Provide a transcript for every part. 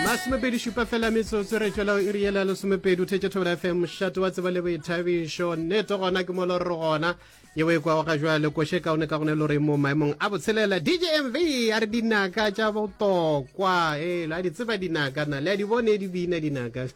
masomepedi šupa fela metsotso re tšwela e riela lesomepedi o thetše thobela fm mošate wa tseba le boithabišo nneto gona ke molo re gona yeo e kwago ga jwale koše kaone ka gone le gore mo maemong a botshelela dj mv a re dinaka tša botokwa e la di tseba dinaka na le a di bone di bina dinaka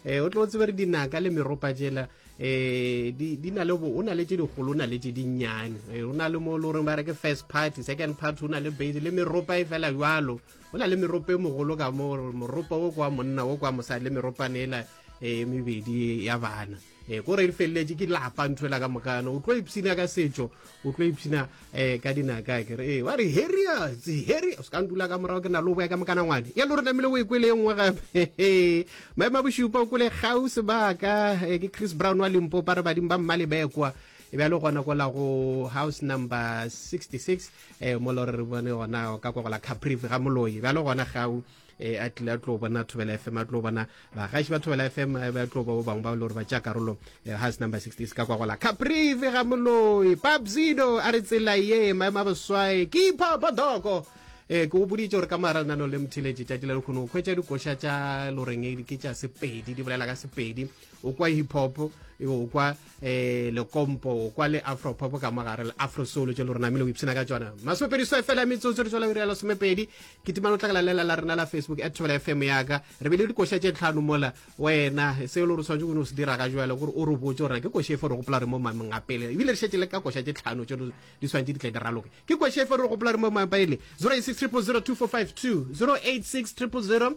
e o tlo tsebere dinaka le meropa jela um di na le o na le tse dikgolo o na le tse dinnyane e, o na le mo le goreng ba re ke first party second party o na le base le meropa e fela jalo o na le meropa e mogolo ka mo moropa o kwa monna o kwa mosadi le meropane ela e mebedi ya bana e ko re e feleletse ke lapa ntho ela ka mokana o tlo ipshina ka setso o tlo ipshina eh ka dinaka ke re ba re heria tsi heri o ska ndula ka morago ke na lo boya ka mokana ngwane ya lo re namile o ikwele e nngwe gape maema bošupa o kwele gau sebaka eh, ke chris brown wa limpopa re badimo ba mmale bekwa e bjale gona kola go house number 66 eh mo lore re bone gona ka kwa gola caprive ga moloi bjale gona gau e a tlile a tlo bona thobela fm a tlo bona bagaši ba thobela fm eh, ba tlo ba ba bangwe ba le gore ba tša karolo eh, has number 60 se ka kwa gola caprive ga moloi papsido a re tsela ye maema boswae ke ipha bodoko ee ke go boditse gore ka maranano le mothiletše tšatši la lekgono o kgwetša dikoša tša loreng ke tša sepedi di bolela ka sepedi o kwa hip hop o kwa eh lekompo kwa le afropop ka mogare le afrosolo tšo le rona mele o ipshina ka tsona masomepedi so fela metsotso re tswala ura ya lesomepedi ke timane o tlakala lela la rena la facebook at thobela fm yaka re bile dikoša tše tlhano mola wena seo le gore tshwanetse o ne o se dira ka jalo gore o re botse gore ke koša efe re gopola re mo mameng a pele ebile re šetse le ka koša tše tlhano tše di tshwanetse di tle di raloke ke koša efe re gopola re mo mameng a pele 086 000 245 2 086 000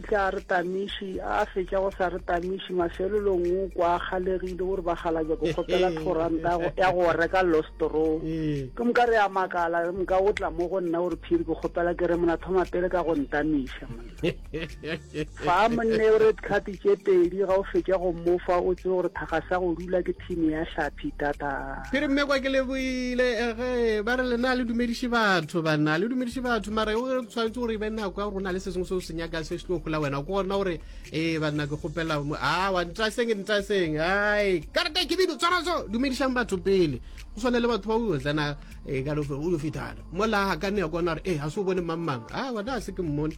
Tla re tamiši, a a fetša go sa re tamiši, mafelelong o kwa a kgalegile o re ba galabja ko kgopela thoranta ya go reka lostorow. Ke moka re a makala, re moka o tla mo go nna o re phiri ke kgopela ke re mona thoma pele ka go ntamiša monna. Fa monne o re tlhapi tše pedi ga o fetša go mmofa o tsebe gore thakga sa go rula ke thini ya hlaphi tata. Phiri mme kwa ke leboile ge ba re lena le dumediše batho banna le dumediše batho mara o tshwanetse gore e be nako ya gore o na le se sengwe se o se nyakang se se tlo gola wena ko gona gore ee banna ke kgopela a wa ntaseng ntaseng ai karata kebidu tswaraso dumedišang batho pele go swane le batho ba o tsena ee ka o yo fetana mola ga ka ne ya kona gore ee ga se o bone mang mang a wena a se ke mmone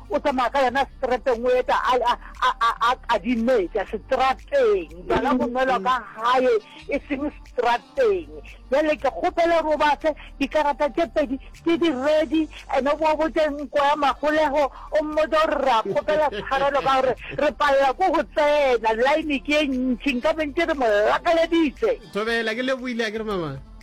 O tsamaya ka yona seterateng, o eta a, a, a, a, a kadimetša seterateng. Bjala bo nwelwa ka gae, e seng seterateng. Bjale ke kgopela gore o ba fe dikarata tše pedi tše di ready, ene o bo botše nko ya magolego, o mmotša gore re a kgopela tshwarelo ka gore re palela ko go tsena, line ke ye ntši, nkabe ntše re mo lakaleditše. Thobela, ke lebohile, akere mama?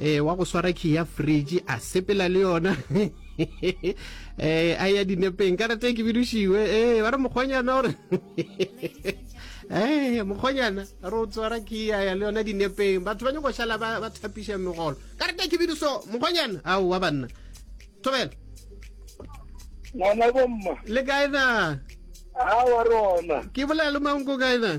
Ee, wa go swara key ya fridge a sepela le yona ee a ya dinepeng ka rate ke bidušiwe ee ba re mokgonyana gore ee mokgonyana re o tswara key ya ya le yona dinepeng batho ba nyako šala ba thapiša megolo ka rate ke biduso mokgonyana ao wa banna thobela ngwana bomma le kae na a wa rona ke bolela le manko kae na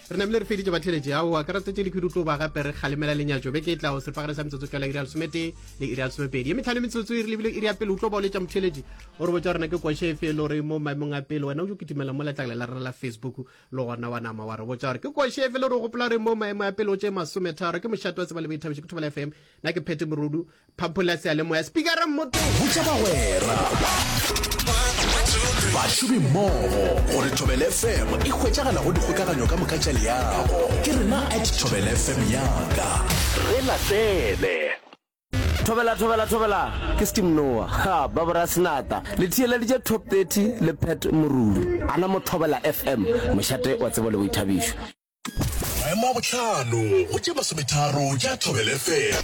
Re namile re feditše batheletše ao a karatse tše dikhudu tlo ba gape re kgalemela lenyatšo beke e tlago sepagare sa metsotso tlala iri ya lesometee le iri ya lesomepedi ye metlhano metsotso e re lebile iri ya pele o tlo ba o letša motheletši o re botša rena ke kwashe efe e le gore mo maemong a pele wena o jo kitimela mo letlakala la rena la facebook le gona wa nama wa re botša gore ke kwashe efe le gore o gopola gore mo maemo a pele o tše masometharo ke mošate wa tseba le boithabišo ke thobela fm na ke phete morudu Phapola Seyalemoya, Spikara Mmoto. Botša bagwera, bašomimmogo gore Thobel FM e hwetšagala go dikgokaganyo ka moka tša leago. Ke rena at Thobel FM yaka. Re latele. Thobela thobela thobela ke Steam Noah ha ba bora senata le thiyeleditše top 30 le Pat Moruli ana mo Thobela FM mošate wa tsebo le boithabišo Maemo a bohlano go tše masometharo tša Thobel FM.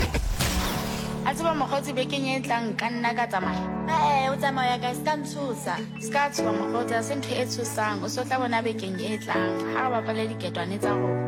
A tseba mokgotsi bekeng e tlang nka nna ka tsamaya? Ee, o tsamaya kae? Ska ntshosa. Ska tshoba mokgotsi, a se ntho e tshosang. O se o tla bona bekeng e tlang ha re bapale diketwane tsa rona.